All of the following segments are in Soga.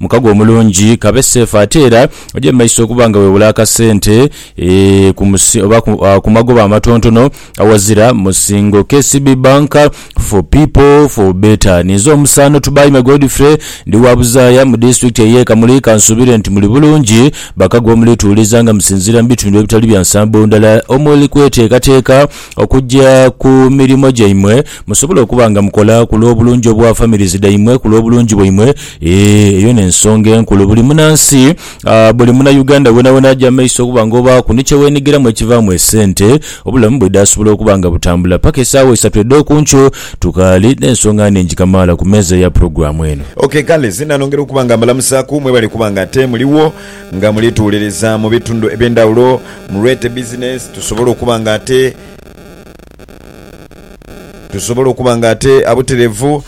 Mukago omulungi kabe safe ate era oje mumaiso okuba nga wewula akasente eeh ku musi oba ku, ah, ku magoba amatontono awazira musingo. KCB Bank for people for better. Ninze omusaano Tubaime Godfrey ndi wa Buzaaya mu disitulikiti eye Kamuli kansuubire nti muli bulungi bakago omulituuliza nga musinziira mu bitundu ebitali bya nsambo ndala omuli kweteekateeka okugya ku mirimo gyaimwe musobole okuba nga mukola ku lw'obulungi obwa families dhaimwe, ku lw'obulungi bwaimwe. Eeh, eyo n'ensonga enkulu. Buli munansi, buli Munauganda wonawona aja mu maiso okuba nga obaaku ni kye weenhigiramu ekivaamu esente, obulamu bwe dhaasobola okuba nga butambula. Paka esaawa isatu edh'oku nkyo tukaali n'ensonga nnhingi kamaala ku meeza ya pulogulaamu eno. Ok kale, zinanongera okuba nga mbalamusaaku. Mwebale kuba nga ate muligho. Nga muli tuwuliriza mu bitundu eby'endhawulo, mulwete bizinensi tusobole okuba nga ate tusobole okuba nga ate abutereevu.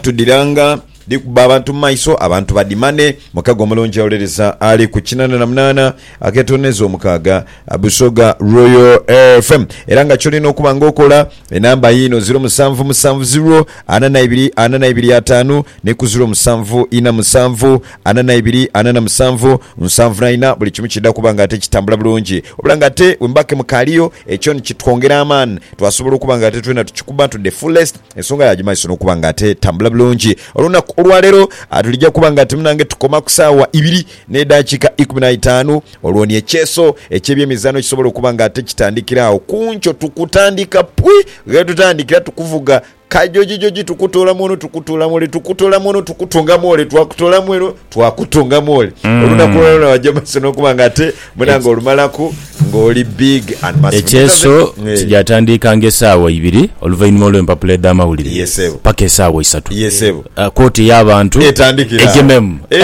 Tudhiranga dhi kubba abantu mu maiso, abantu badhimane. Mukago omulungi awuliriza ali ku kinaana na munaana aketooneza omukaaga Busoga Royal FM. Era nga ky'olina okuba nga okola, enamba yiino, ziro musanvu musanvu ziro ana na ibiri ana na ibiri ataanu ni ku ziro musanvu ina musanvu ana na ibiri, ana na musanvu, nsanvu na ina, buli kimu kidha kuba nga ate kitambula bulungi. Wabula nga ate wemuba ke mukaaliyo, ekyo ni kitwongera amaani, twasobola okuba nga ate twena tukikuba to the fullest, ensonga ya gima iso n'okuba nga ate tambula bulungi. Olunaku olwa leero tulija kuba nga ate munange tukoma ku saawa ibiri n'edhakiika ikumi na itaanu, olwo ni ekyeso eky'ebyemizaano kisobola okuba nga ate kitandikira agho. Ku nkyo tukutandika pwi ghe tutandikira tukuvuga. Kajojijoji tukutoolamu ono tukutoolamu ole tukutoolamu ono tukutongamu ole twakutoolamu eno twakutongamu ole mm. olunaku lwona wajja maso nokuba nga ate munange olumalaku ng'oli big and massive. ekyeso eh. kijatandika nga esaawa ibiri oluvainhuma olw'empapula edh'amawulire Yes, sebo. paka esaawa isatu Yes, sebo. Ah, kooti ey'abantu Etandikira awo. egememu Eh,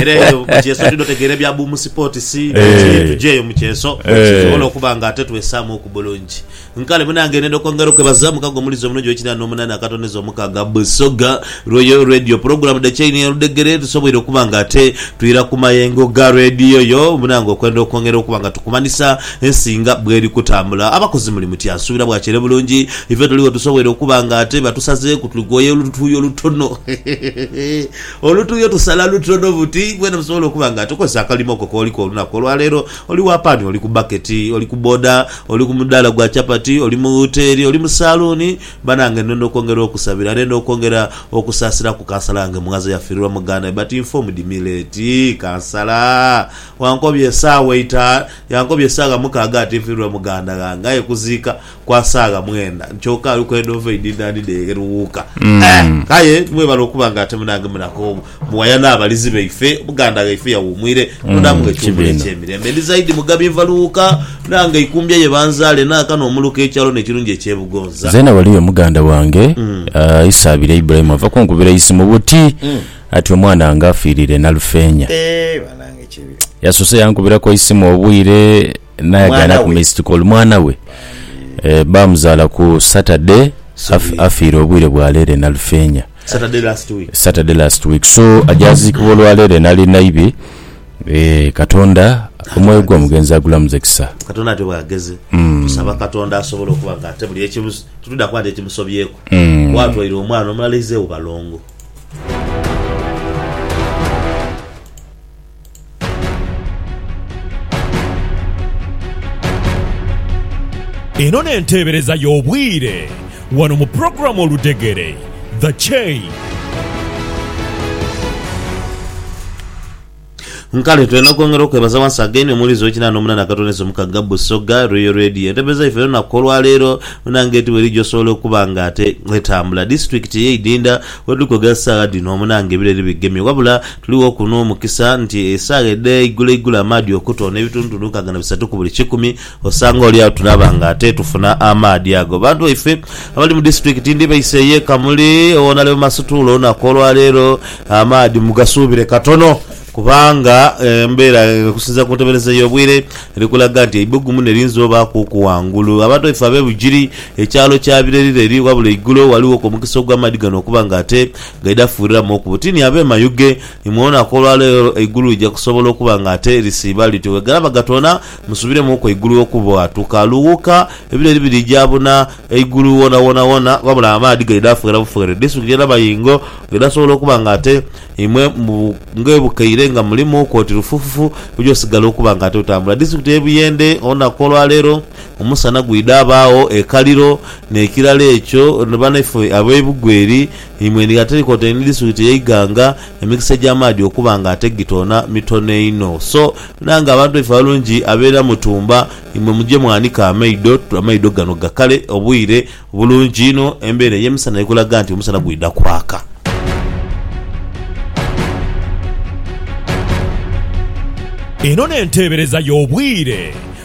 era eyo mu kyeso tulina otegeera ebya buumu sipootisi Eh. tujeeyo mu kyeso Eh. tusobole okuba nga ate twesaamu ku bulungi Nkale buna ngenenda okwongera okwebaza mukago omulizi omulungi ow'ekinaana n'omunaana akatoneza omukaaga Busoga Royal Radio pulogulamu dhe Chain ya Ludhegere tusoboire okuba nga ate twira ku mayengo ga Radio yo buna nga okwenda okwongera okuba nga tukumanhisa ensi nga bweri kutambula. Abakozi muli mutya? Nsuubira bwakyeere bulungi. Ife tuligho tusoboire okuba nga ate batusazeeku tuli kwoya olutuuyo lutono olutuuyo tusala lutono buti mwena musobole okuba nga tukozesa akalimo ko kooliku olunaku olwaleero. Oli wa paani, oli ku baketi, oli ku boda, oli ku mudaala gwa chapati, oli mu wuteeri, oli mu saaluuni, banange ndenda okwongera okusabira, ndenda okwongera okusaasira ku kansala wange Mughaza eyafiirirwa muganda we but informed me late kansala wankobya esaawa eita, yankobya esaawa mukaaga ati nfiirirwa muganda ghange aye kuziika kwa saagha mwenda kyoka aliku endhovu eidhindhani dheegheruwuuka. Eh! Aye mwebale okuba nga ate munange munaku omu muwaya n'abalizi baife, omuganda ghaife yawuumwire, Katonda amughe ekiwumulo eky'emirembe. Ndi zaidi Mugabi nva Luwuuka, nange Ikumbya ye banzaale, naaka n'omuluka ekyalone ekirungi eky'e Bugonza. Zeena waliyo muganda wange Isaabire Ibrahim ava kunkubira eisi mu buti ati omwanange afiirire Nalufeenya. Eeh banange kibi. Yasoose yankubiraku eisimu obwire. Naye agana Mwana ku we. miss kikolo mwana we eh, bamuzala ku Saturday af, afiire obwire bwa leero e Nalufeenya. Saturday last week. Saturday last week so ajaziikibwa olwaleero enali naibi eh, katonda omwoyo gwo mugenzi agulamuze kisa. Katonda ati bwageze Hmm. tusaba Katonda asobola okuba nga ate buli ekimu tutuda kuba nti ekimusobyeku Hmm. watwaire omwana omulala ize ubalongo Eno n'enteebereza y'obwire wano mu pulogulaamu Oludhegere, The Chain. Nkale twena okwongera okwebaza once again omuwulize w'ekinana n'omunana Katonese Omukagga Busoga Royal Radio entebeza yaife ey'olunaku olwaleero munange eti weri gyosobola okuba nga ate etambula disitulikiti ey'eidinda wetuli kwogera saagha dhino munange ebireri bigemye wabula Tuligho ku n'omukisa nti esaagha edha igulo igulo amaadhi okutoona ebitundutundu nkaaga na bisatu ku buli kikumi, osanga oli agho tunaaba nga ate tufuna amaadhi ago. Bantu baife abali mu disitulikiti ndi baise ey'e Kamuli ow'onhale mu Masutuula olunaku olwa leero, amaadhi mugasuubire katono kubanga embeera okusinziira ku ntebereza y'obwire eri kulaga nti eibugumu ne liyinza obaakuuku ghangulu. Abantu baife ab'e Bugiri, ekyalo kya Birerire eri wabula eigulo walighoku omukisa ogw'amaadhi gano okuba nga ate Gaida fuuliramu oku butini abeemayughe. Ni mwoonaku olwa leero eigulu lija kusobola okuba nga ate lisiiba lityo. Bweganaba gatoona, musubiremuuku eigulu okubwatuka. Lughuka, ebileri birija buna eigulu woonawoona wona, wabula amaadhi gaida fweera bufweere. Disitulikiti ya Nabayingo gaida sobola okuba nga ate imwe ng'ebukeire nga mulimuuku oti lufufufu, oja osigala okuba nga ate otambula. Disitulikiti y'e Buyende, olunaku olwa leero omusana gwida baagho ekaliro, n'ekirala ekyo ni banaife ab'ebugwa eri, Eimwe endiga terikoota enidiswiti ey'eighanga, emikisa egy'amaadhi okuba nga ate gitoona mitono inho. So, nange abantu baife abalungi ab'e Namutumba, imwe muje mwanike amaido, amaido gano gakale, obwire bulungi inho, embeera ey'emisana eri kulaga nti omusana gwidha kwaka. Eno n'enteebereza y'obwire